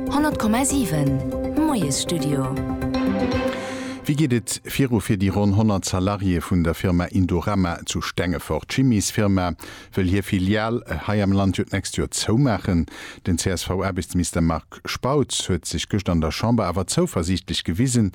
100,7 Moiesstudio. Wéi geet et viru fir déi ronn 100 Salariéë vun der Firma Indorama zu Stengefort? D'Chimiesfirma wëll hir Filial hei am Land jo d'nächst Joer zoumaachen. Den CSV-Aarbechtsminister Marc Spautz huet sech gëscht an der Chamber awer zouversiichtlech gewisen,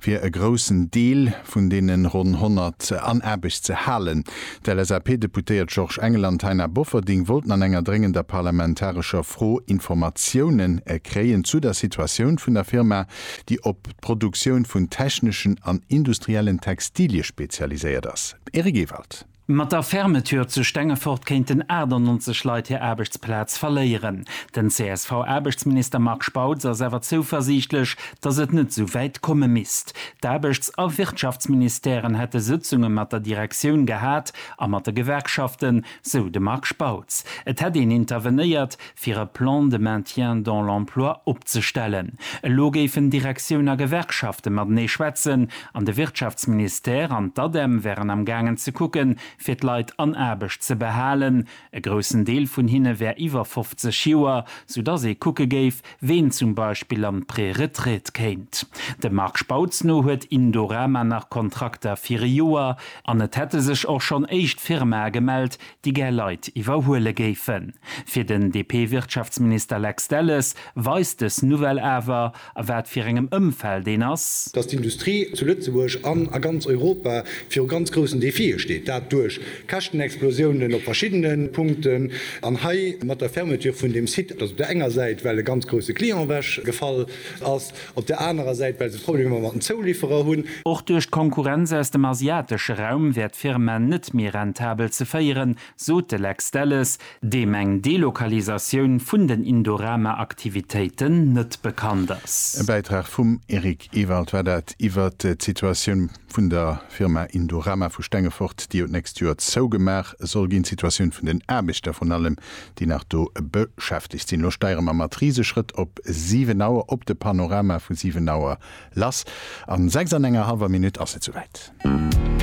fir e groussen Deel vun deene ronn 100 an Aarbecht ze halen. D'LSAP-Deputéiert Georges Engel an d'Taina Bofferding wollten an enger dréngender parlamentarescher Fro Informatiounen kréien zu der Situatioun vun der Firma, déi op d'Produktioun vun techneschen an industriellen Textilie spezialiséiert ass. Eric Ewald. Mat der Fermeture zu Stengefort kéinten 98 Leit hir Aarbechtsplaz verléieren. Den CSV-Aarbechtsminister Marc Spautz ass awer zouversiichtlech, datt et net esou wäit komme misst. D'Aarbechts a Wirtschaftsministèren hätte Sëtzunge mat der Direktioun gehat a mat de Gewerkschaften, sou de Marc Spautz. Et hätt een intervenéiert, fir e Plan de maintien dans l'emploi opzestellen. Elo géifen Direktioun a Gewerkschafte matenee schwätzen an de Wirtschaftsministère an d'ADEM wären am gaangen ze kucke fir d'Leit an Aarbecht ze behalen. E groussen Deel vun hinne wär iwwer 50 Joer, soudass ee kucke géif, ween zum Beispill an d'Préretraite kéint. Dem Marc Spautz no huet Indorama nach Kontrakter fir e Joer an et hätte sech och schonn éischt Firmae gemellt, déi gär Leit iwwerhuele géifen. Fir den DP-Wirtschaftsminister Lex Delles weist dës Nouvelle awer, a wat fir engem Ëmfeld een ass. Datt d'Industrie zu Lëtzebuerg an a ganz Europa viru ganz groussen Defie steet. Dat duerch Käschtenexplosiounen op verschiddene Punkten an hei mat der Fermeture vun deem Site, datt op der enger Säit well e ganz grousse Client ewech gefall ass Op der anerer Säit, well se Problemer mat den Zouliferer hunn. Och duerch d'Konkurrenz aus dem asiatesche Raum wär d'Firma net méi rentabel ze féieren, sot de Lex Delles, deem eng Delokalisatioun vun den Indorama-Aktivitéiten net bekannt ass. E Bäitrag vum Eric Ewald war dat iwwert d'Situatioun vun der Firma Indorama vu Stengefort, déi jo d'nächst Joer zougemaach soll ginn. D'Situatioun vun den Aarbechter vrun allem déi nach do beschäftegt sinn. Elo steiere mer mat Riseschrëtt op 7 Auer, op de Panorama vu 7 Auer lass. A 6 an enger hallwer Minutt ass et souwäit.